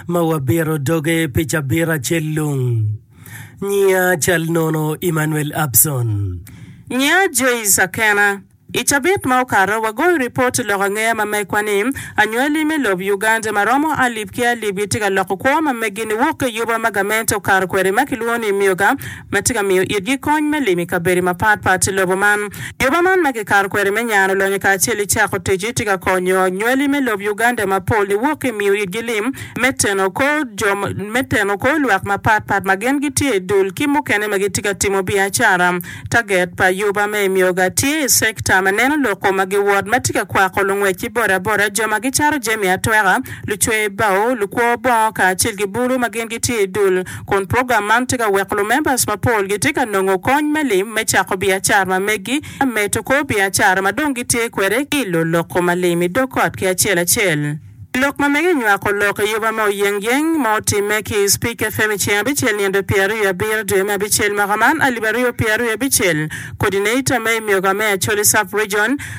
ma wabito doge pi cabit acel lung. Nyiya cal nono Emmanuel Abson. Nyiya Joyce Akena. I cabit ma okato, wagoyo ripot i lok angeya ma megwa ni, Anywali me lob Uganda ma romo alip ki alip gitye ka loko kwo ma meggi niwok ki yuba ma gamente okato kwede ma kilwongo ni Myoga ma tye ka miyo itgi kony me limo i kabedo mapat pat i lobo man. Juba man ma kikato kwede me nyano lonyo kacel ki cako tic-ci tye ka konyo nywali me lob Uganda mapol niwok ki i miyo itgi lim me teno kor jo me teno kor lwak mapat pat ma gin gitye i dul ki mukene ma gitye ka timo biacara. Taget pa Juba me Emyoga tye i cekta ma neno loko ma giwot ma tye ka kwako lungwec ki boda boda, jo ma gicato jami atweka, lucwer bao, lukwo bongo kacel ki bulu ma gin gitye i dul. kun program man tye ka weko lumembers mapol gitye ka nongo kony me lim me cako biacara ma meggi me medo kor biacara ma dong gitye kwede ki i loloko ma lim i dog ot ki acel acel. I lok ma mege nywako lok eyoba ma oyeng yeng ma otimme ki i Spik FM i ceng abicel nino pyer aryo abiro dwe me abicel mwaka man alip aryo pyer aryo abicel, Coordinator me i myoga me Acholi Sub-Region,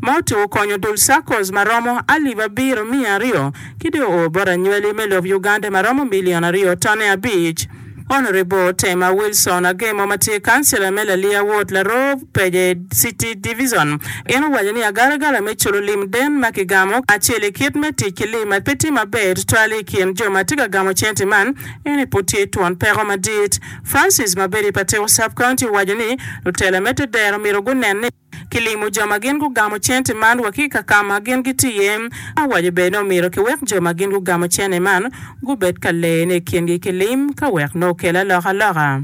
Moti okonyo dul SACCOs ma romo alip abiro miya aryo ki dong oo bot anywali me lob Uganda ma romo milion aryo tone abic. Honourable Tema Wilson Agemo ma tye Councillor me Lalia Ward Laroo Peje City Divison en owaco ni agalagala me culo lim den ma kigamo acel i kit me tic ki lim ma pe tye maber tutwal i kin jo ma tye ka gamo cente man ene pud tye twon peko madit. Francis ma bedo i Patiko Sub County owaco ni lutela me te dero myero gunen ni Kilimo jo ma gin gugamo cente man wa ki i kaka ma gin gitye iye. Awaco bene ni omyero kiwek jo ma gin gugamo cene man gubed ka leyone i kingi ki lim ka wek nongo okel alokaloka.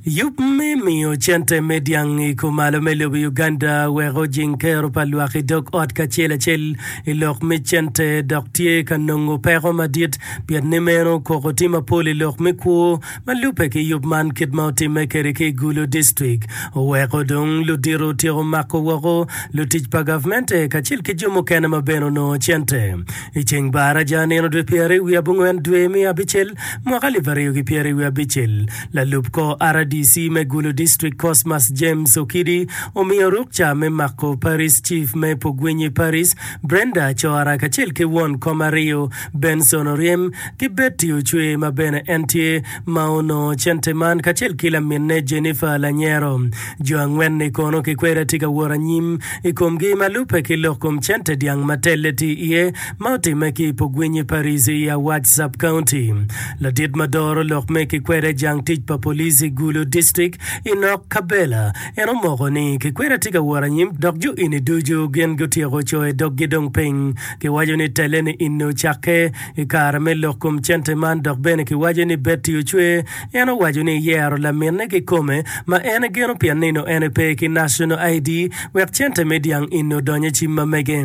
Yub me miyo cente me dyang i kumalo me lobo i Uganda weko ojing kero pa lwak i dog ot kacel acel i lok me cente dok tye ka nongo peko madit pien ni meno koko tye mapol i lok me kwo Ma lubbe ki yub man kit ma otimme kwede ki i Gulu distrik, oweko dong ludito otyeko mako woko lutic pa gavmente kacel ki jo mukene ma bene onongo cente. I ceng bar aja nino dwe pyerariwi abongwen dwe me abicel mwaka alip aryo ki pyerariwi abicel, lalub kor RDC me Gulu distrik Cosmas James Okidi omiyo rukca me mako Parish Chief me Pugwinyi Parish Brenda Acora kacel ki won kom aryo Benson oryen ki Betty Ocwe ma bene en tye ma onongo cente man kacel ki laminne Jennifer Lanyero. Jo angwen-ni kono kikwede tye ka wot anyim i komgi ma lubbe ki lok kom cente dyang ma telle tye iye ma otimme ki i Pogwinyi Parish i Awac Sub-County. Ladit ma doro lok me kikwede jang tic pa police i Gulu District i Nok Cabela en omoko ni kikwede tye ka wot anyim dok jo eni ducu gin gutyeko coyo doggi dong piny Kiwaco ni telle-ni inne ocakke i kare me lok kom cente man dok bene kiwaco ni Betty ocwe. En owaco ni eyero laminne kikome ma en egeno pien nino en epe ki National ID wek cente me dyang inne odony i cim ma mege.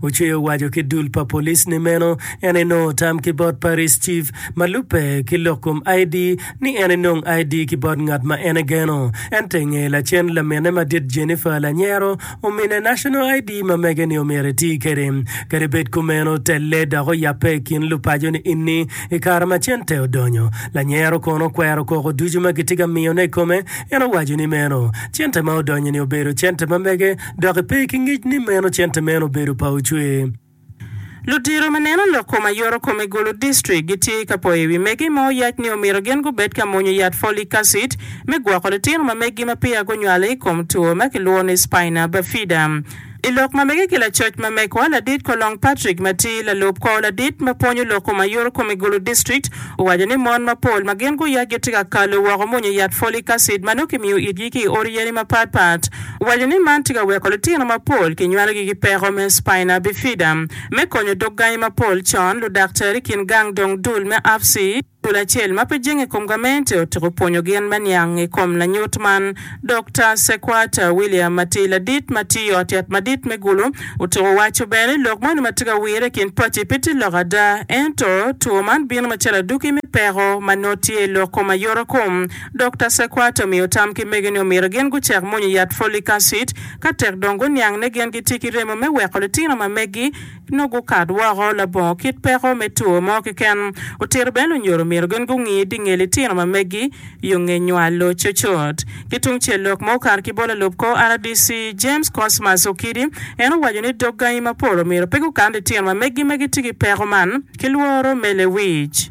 Ocwe owaco ki dul pa police ni meno en enongo tam ki bot Parish Chief ma lubbe ki lok kom ID ni en enong ID ki bot ngat ma en egeno. Ento i nge lacen laminne madit Jennifer lanyero Omine National ID ma mege ni omyero iti kede. Kadi bed kumeno, telle dok oyabbe i kin lupaco ni inni i kare ma cente odonyo. Lanyero kono okwero koko ducu ma gitye ka miyone i kome. En owaco ni meno cente ma odonyo-ni obedo cente ma mege dok ipe ki ngic ni meno cente meno obedo pa ocwer. Ludiro ma neno lok kom aye oro kome gulu district gitye ka poyo iwi mege ma oyac ni omito gin gubed ka mwonyo yat folic acid me gwoko litino ma meggi ma peya gunywale ikom two ma kilwongo ni spina bifida. Ilok ma mege ki lacoc ma mekwa ladit Kolong Patrick ma tye lalub kor ladit ma pwonyo lok kom aye oro kome gulu district owaco ni mon ma pol ma gin guyac gitye ka kalo woko mwonyo yat folic acid ma nongo kimiyo itgi ki i ot yeni ma pat pat owaco ni man tye ka weko litino mapol kinywalogi ki peko me spina bifida. Me konyo dog gangi mapol con, ludaktari i kin gang dong dul me AFC, dul acel ma pe jenge i kom gamente, otyeko pwonyo gin me niang i kom lanyut man. Dokta Sequat William ma tye ladit ma tiyo i ot yat madit me Gulu otyeko waco bene ni lok moni ma tye ka wirre i kin paci pe tye lok ada ento two man bino macalo aduki me peko ma nongo tye i lok kom ayotakom Dokta Sequate omiyo tam ki mege ni omyero gin gucak mwonyo yat folic acid ka tek dong guniang ni gin gitye ki remo me weko litino ma megi nongo gukat woko labongo kit peko me two mo keken. Otito bene lunyoro omyero gin gungi di nge litino ma megi yo nge nywalo cocot. Ki tung cel lok ma okato ki bot lalub kor RDC James Cosmas Okidi en owaco ni dog gangi mapol omyero pe gukan litino ma megi ma gitye ki peko man ki lworo me lewic.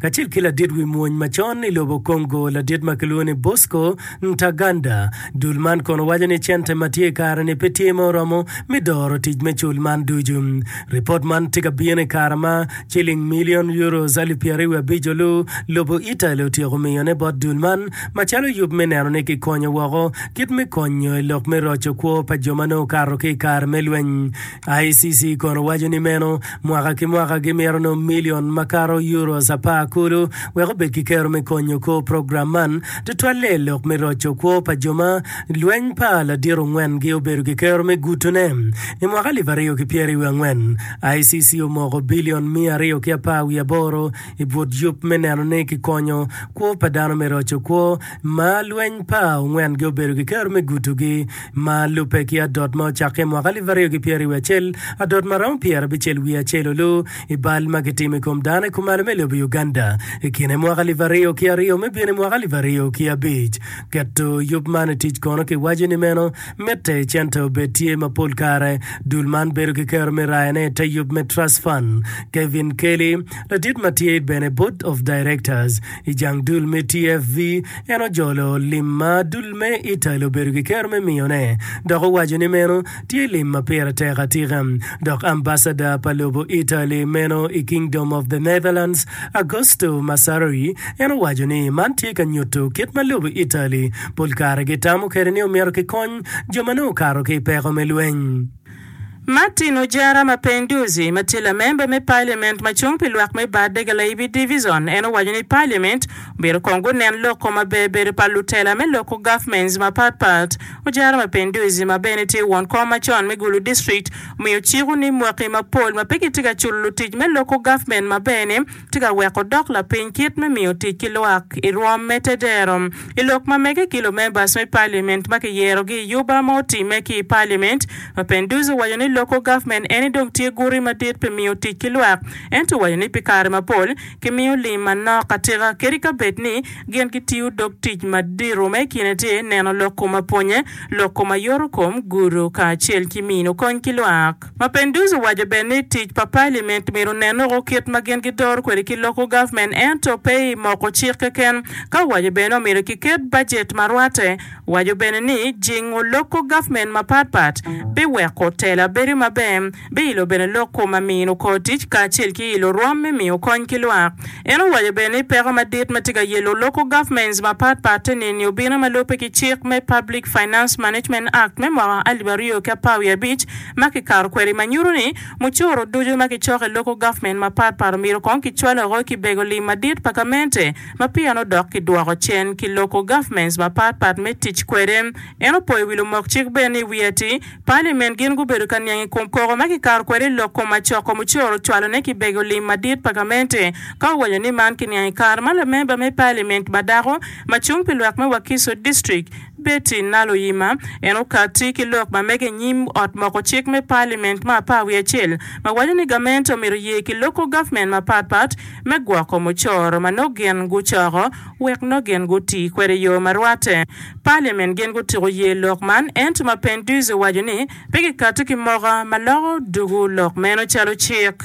kacel ki ladit wi mwony macon i lobo Congo, ladit ma kilwongo ni Bosco Ntaganda. Dul man kono waco ni cente ma tye i kare-ni pe tye ma oromo me doro tic me cul man ducu. Ripot man tye ka bino i kare ma ciling milion Euros alip pyeraryo abico lu lobo Italy otyeko miyone bot dul man macalo yub me neno ni kikonyo woko kit me konyo i lok me roco kwo pa jo ma nongo okato ki i kare me lweny ICC kono waco ni meno mwaka ki mwaka gimito nongo milion makato Euros apar kulu wek obed ki kero me konyo kor program man, tutwalle i lok me roco kwo pa jo ma lweny pa ladit ongwen gi obedo ki kero me guto ne. I mwaka alip aryo ki pyeri wiye angwen, ICC omoko bilion miya aryo ki apar wiye aboro i but yub me neno ni ki konyo kwo pa dano me roco kwo ma lweny pa ongwen gi obedo ki kero me guto gi Ma lubbe ki adot ma ocakke i mwaka alip aryo ki pyeri i wi acel, adot ma romo pyera bicel wiye acel olu i bal ma kitimo i kom dano i kumalo me lobo Uganda i kine mwaka alip aryo ki aryo me bino i mwaka alip aryo ki abic. Keto yub man i tic kono ki waco ni meno mitte cente obed tye ma pol kare dul man bedo ki kero me rayo ne ite yub me Trust Fund. Kevin Kelly, ladit ma tye bene Board of Directors, I jang dul me TFV, en ojolo lim ma dul me Italy obedo ki kero me miyone, dok owaco ni meno tye lim ma pire tek atika. Dok ambasada pa lobo Italy meno i Kingdom of the Netherlands, Augusto Massari, en owaco ni man tye ka nyuto kit ma lobo Italy pol kare gitamo kwede ni omito kikony jo ma nongo okato ki i peko me lweny. Martin Ojara Mapinduzi, ma tye lamemba me Paliament ma cung pi lwak me Bade Galaibi Divizon, en owaco ni Paliament omyero kong gunen loko maber bedo pa lutela me loko gavments mapat pat. Ojara Mapinduzi, ma bene tye won kom macon me Gulu District, omiyo ciko ni mwaki mapol ma pe gitye ka culo lutic me loko gavment maber-ni, tye ka weko dok lapiny kit me miyo tic ki lwak i rwom me tedero. I lok ma mege ki lumembas me Paliament ma kiyerogi i Yuba ma otimme ki i Paliament, Mapenduz owaco ni loko gavment eni dong tye guti madit pi miyo tic ki lwak ento owaco ni pi kare mapol kimiyo lim manok atika kadi ka bed ni gin gitiyo dog tic madito ma i kine tye neno lok kom apwonye, lok kom ayotokom, gudo kacel ki mino kony ki lwak. Mapenduz owaco bene ni tic pa Paliament myero onen woko kit ma gin gidoro kwede ki loko government ento pe i moko cik keken, ka owaco bene omyero kiket bajet ma rwate. Owaco bene ni jingo loko government mapat pat biweko tela bedo maber, biilo bene loko ma mino kor tic kacel ki ilo rwom me miyo kony ki lwak. En owaco bene ni peko madit ma tye ka yelo local governments mapat pat-ti ni ni obino ma lubbe ki cik me Public Finance Management Act me mwaka alip aryo ki apar wiye abic ma kikato kwede ma nyuto ni mucoro ducu ma kicoko i local government mapat pat omyero kong kicwaloo ki bego lim madit pa gamente ma pien-nu dok kidwoko cen ki local governments mapat pat me tic kwede. En opoyo wi lumok cik bene ni wi ati Parliament gin gubedo ka niang i kom koko ma kikato kwede i lok kom macoko mucoro ocwalo ne kibego lim madit pa gamente ka owanyo ni man ki niang i kare ma lamemba me parliament ma dako ma cung pi lwak me Wakiso district Betty Naloyima en okati ki lok ma mege i nyim ot moko cik me parliament ma apar wiye acel ma waco ni gamente omito ye ki loko government ma pat pat me gwoko mucoro ma nongo gin gucoko wek nongo gin guti kwede i yo ma rwate. Parliament gin gutyeko ye lok man ento ma Penduze owaco ni pe gikati ki moka ma loko dugu lok meno calo cik.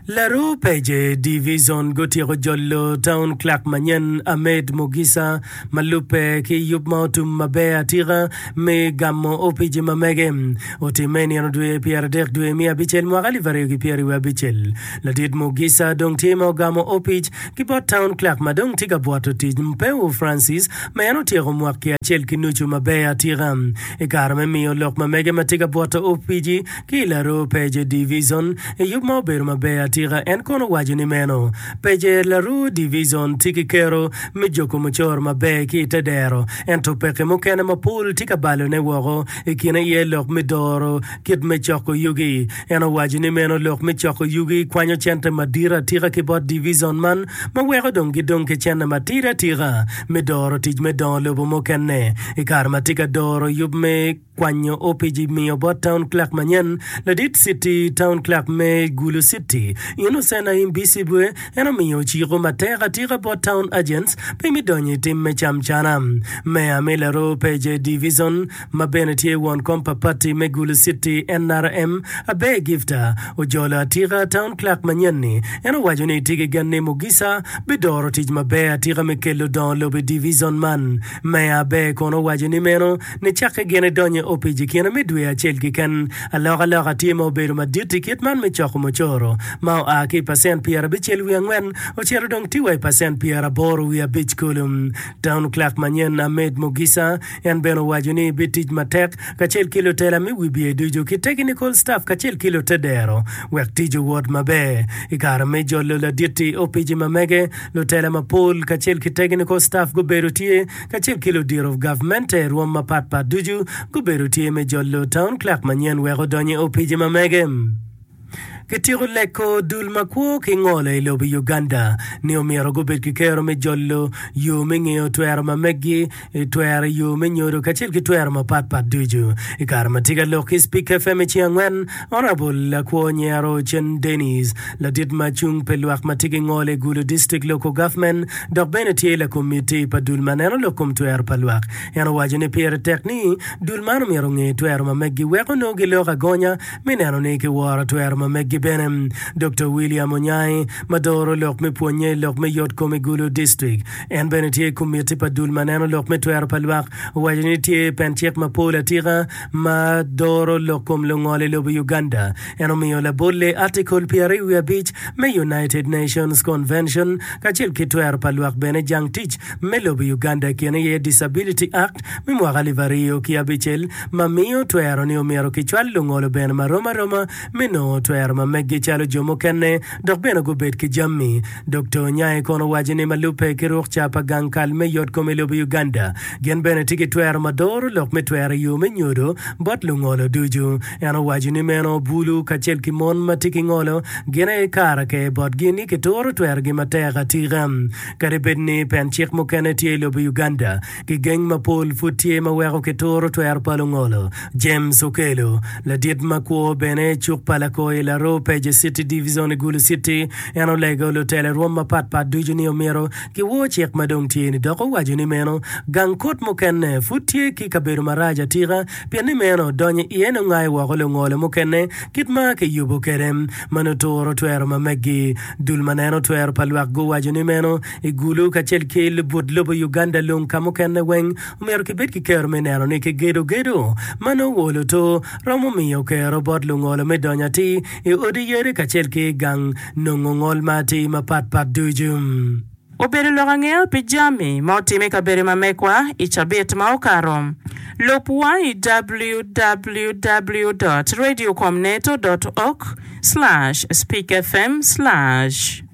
Laru Page Division gutyeko jolo Town Clerk manyen Ahmed Mugisa ma lubbe ki yub ma otum maber atika me gamo opici ma mege. Otimme i nino dwe pyera adek dwe me abicel mwaka alip aryo ki pyera wiye abicel. Ladit Mugisa dong tye ma ogamo opic Ki bot Town Clerk ma dong tye ka bwoto tic, Mpewo Francis, ma en otyeko mwaki acel ki nucu maber atika i kare me miyo lok ma mege ma tye ka bwoto opici ki i Laroo Peje Divizon i yub ma obedo maber atika, en kono owaco ni meno Peje Laroo Divizon tye ki kero me joko mucoro maber ki i te dero ento peke mukene mapol tye ka balone woko i kine aye lok me doro kit me coko yugi En owaco ni meno lok me coko yugi kwanyo cente madit atika ki bot divizon man ma weko dong gidong ki cene matidi atika me doro tic me dongo lobo mukene. I kare ma tye ka doro yub me kwanyo opic i miyo bot taun clerk manyen, ladit citi taun clerk me Gulu Citi, Innocent Ayim Bisibwe, en omiyo ociko matek atika bot taun agents pe me donyo i tim me camcana. Meya me Laroo Peje Divizon, ma bene tye won kom pa pati me Gulu City, NRM, Abbey Gifta, ojolo atika Town Clerk manyen-ni. En owaco ni tye ki gen ni Mugisha bidoro tic maber atika me kelo dongo lobo i divizon man. Meya Abbey kono owaco ni meno nicakke gin idonyo i opic i kine me dwe acel keken. Alokaloka tye ma obedo madit i kit man me coko mucoro, ma oa ki i pacent pyerabicel wiye angwen ocito dong tye wa i pacent pyeraboro wiye abic kulu. Town Clerk manyen, Ahmed Mugisha, En bene owaco ni bitic matek kacel ki lutela me wibye ducu ki tekinikol ctaf kacel ki lute dero wek tic owot maber. I kare me jolo ladit-ti opici ma mege, lutela mapol kacel ki tekinikol ctaf gubedo tye kacel ki ludito gavmente rwom mapatpat ducu gubedo tye me jolo taun clerk manyen wek odony i opici ma mege. Kityeko leko dul ma kwo ki ngolo i lobo Uganda ni omyero gubed ki kero me jolo, yo me ngeyo twero ma meggi, twero i yo me nyodo kacel ki twero mapat pat ducu. I kare ma tye ka lok ki Speak FM i ceng angwen, Honourable Lakwo Nyero Ochen Denis, ladit ma cung pi lwak ma tye ki ngolo i Gulu District Local Government dok bene tye lakomitti pa dul ma neno lok kom twero pa lwak, en owaco ni pire tek ni dul man omyero onge twero ma meggi wek onongo giloko agonya me neno ni kiworo twero ma meggi bene. Dokta William Onyangi, ma doro lok me pwonnye i lok me yotkom i Gulu District, en bene tye i komitti pa dul ma neno lok me twero pa lwak, owaco ni tye pen cik mapol atika ma doro lok kom lungol i lobo Uganda. En omiyo labolle Article pyeraryo wiye abic me United Nations Convention kacel ki twero pa lwak bene jang tic me lobo Uganda i kine aye Disability Act me mwaka alip aryo ki abicel, ma miyo twero ni omyero kicwal lungolo bene ma rom aroma me nongo twero ma meggi calo jo mukene dok bene gubed ki jami. Dokta Onyae kono owaco ni ma lubbe ki ruk ca pa gang kal me yot kom i lobo Uganda, gin bene tye ki twero ma doro lok me twero i yo me nyodo bot lungolo ducu. En owaco ni meno bulu kacel ki mon ma tye ki ngolo gin aye kara ker botgi ni kituro twerogi matek atika. Kadi bed ni pen cik mukene tye i lobo Uganda, Gigeng mapol pud tye ma weko kituro twero pa lungolo. James Okello, ladit ma kwo bene i cuk pa Lakoi i Laroo Pages City Divizon i Gulu City, en olego lutele rwom mapat pat ducu ni omyero giwor cik ma dong tye ni dok owaco ni meno gang kut mukene pud tye ki kabedo marac atika pien ni meno donyo iye nongo aye woko lungolo mukene kit ma kiyubo kwede ma nuturo twero ma megi. Dul ma neno twero pa lwak guwaco ni meno I Gulu kacel ki lubut lobo Uganda lung ka mukene weng omyero kibed ki kero me neno ni kigedo gedo ma nongo wo luto romo miyo kero bot lungolo me donyo atir i odi yadi kacel ki gang nongo ngol ma atir mapat pat ducu. Obedo lok angeya pi jami ma otim i kabedo ma mekwa i cabit ma okato. Lub wa i www dot radio com neto dot org slash speak fm slash.